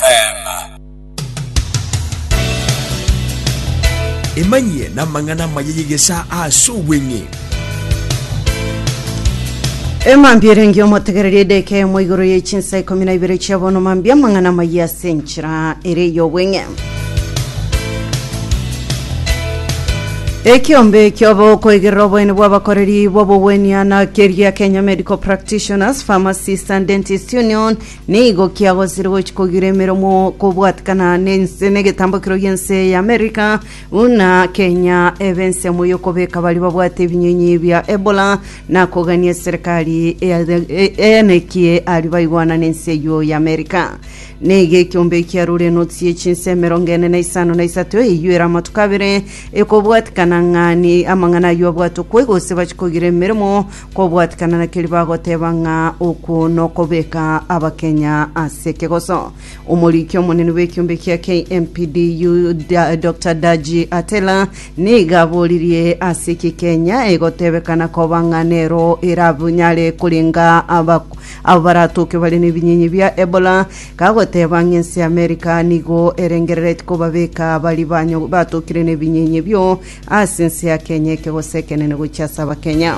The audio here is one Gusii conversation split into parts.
Teema. Emanyie namang'ana amaya y'egesaa ase obweng'e. Emambia erenge omotegereria edeka eyemo igoro ye chinsa ikomi na ibere chia bono mambia amang'ana amayia ase enchera ere y'obweng'e. Ekiombe ekioba okoigerera oboeni bw'abakoreri b'obogwenia na keria Kenya Medical Practitioners, Pharmacists and Dentists Union Nigo kiagosire gochia kogira emeromo kobwatikana nense negetambo ekero gi'ense ya America buna Kenya ebe ensemo y'okobeka baria babwate ebinyinyi bia Ebola na kogania eserekari eanekie aria baigwana nense eyio ya America. Nigo ekiombe ekiarure enotsi ye chinsa emerongo ene na isano na isato eyio ere amatuko abere ekobwatikana ng'a ni amang'ana ayio abwate okwe gose bachia kogira emeremo Kobwatikana na keria bagoteba ng'a okwo nokobeka abakenya ase ekegoso. Omoriki omonene bw'ekiombe kia KMPDU Da- Dr Daji Atela nigo aboririe ase eki Kenya egotebekana koba ng'a nero erabnyare korenga aba- abo baratoke bare nebinyinyi bia Ebola kagoteba ng'a ense ya America nigo erengerereti kobabeka baria banyo- batokire nebinyinyi ebio Ase ense ya Kenya ekegose ekenene gochia ase abakenya.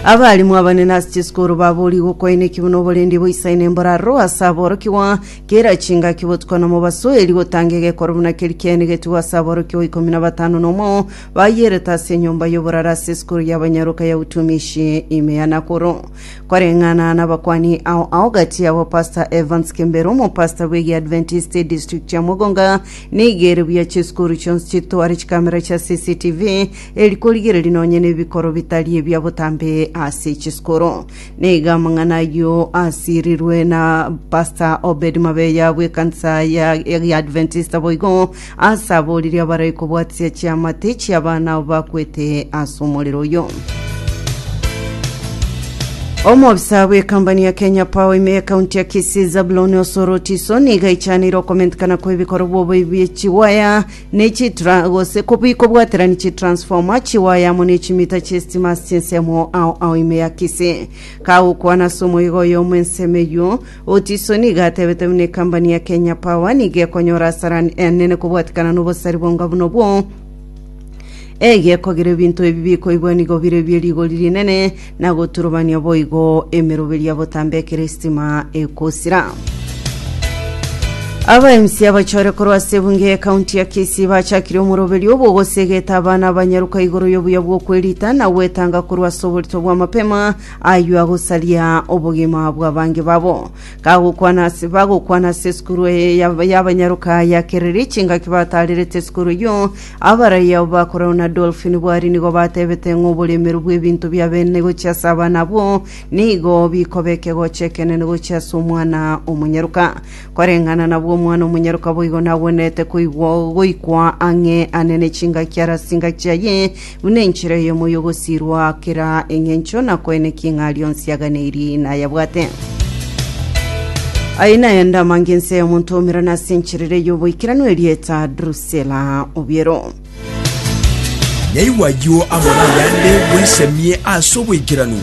Abalimu abanene ase chisukuru babori gokoineki buna oborendi boisaine mboraro ase aborokigwa kera chingaki botuko na mobaso eri gotanga egekoro buna keri kene getugo ase aborokigwa ikomi na batano na omo bayerete ase enyomba y'oboraro ase esukuru y'abanyaroka ya utumishi ime ya Nakuru koreng'ana n'abakwani ao ao gati yabo Pastor Evans Kembero omopastor bw'egiadventist district ya Mugunga Nigo ere buya chisukuru chionsi chitware chikamera chia CCTV eri korigereria nonye nebikoro bitari ebia botambe ase chisukuru. Nigo amang'ana ayio asirirwe na Pastor Obed Mabeya bw'ekanisa ya ya Adventista boigo ase aboririe abarae kobwatisia chiamate chi'abana abo bakwete ase omorero oyo. Omobisa bw'ekampani ya Kenya Power ime ekaunti ya Kisii Zabuloni Osoro Otiso nigo aichanire okomentikana kw'ebikorwa oboibi bie chiwaya ne chitra gose kobi kobwaterani chitransforma chiwaya amo ne chimita chi'esitima ase chinsemo ao ao ime ya Kisii kagokwana ase omoiga oyo omw'ensemo eyio Otiso nigo atebete buna ekampani ya Kenya Power nigo ekonyora asara enene kobwatikana n'obosari bonga buna obwo Egekoa gere binto ebi bikoigwa nigo bire bie rigori rinene, na goturubania boigo emeroberi ya botambe ekero esitima egosira. Aba MC abachore korwa ase ebunge ya ekaunti ya Kisii bachakire omoroberi obogosegeta abana abanyaruka igoro y'obuya bw'okwerita na gwetanga korwa ase oborito bwa mapema aywo agosaria obogima bw'abange babo kagokwana ase bagokwana ase esukuru eye y'abanyaruka ya Kereri chingaki batarerete esukuru eywo Abaraiya o bakoro na Dolfin Bwari nigo batebete ng'a oboremeru bw'ebinto bi'abeene gochia ase abana abwo nigo bikoba ekegocho ekenene gochia ase omwana omonyaroka. Koreng'ana nabwo omwana omonyaroka boigo nagwenerete koigwa goikwa ang'e ane ne chingaki are ase engaki yaye buna enchera eyemo y'ogosirwa kera eng'encho na koenekia ing'a aria onsi aganeirie nayabwate. Aye naende amange ense y'omonto omerane ase encherere y'oboikeranu erieta Drus Sela, Obiero. Naigwa ayio amo nayande, bwesemie ase oboikeranu.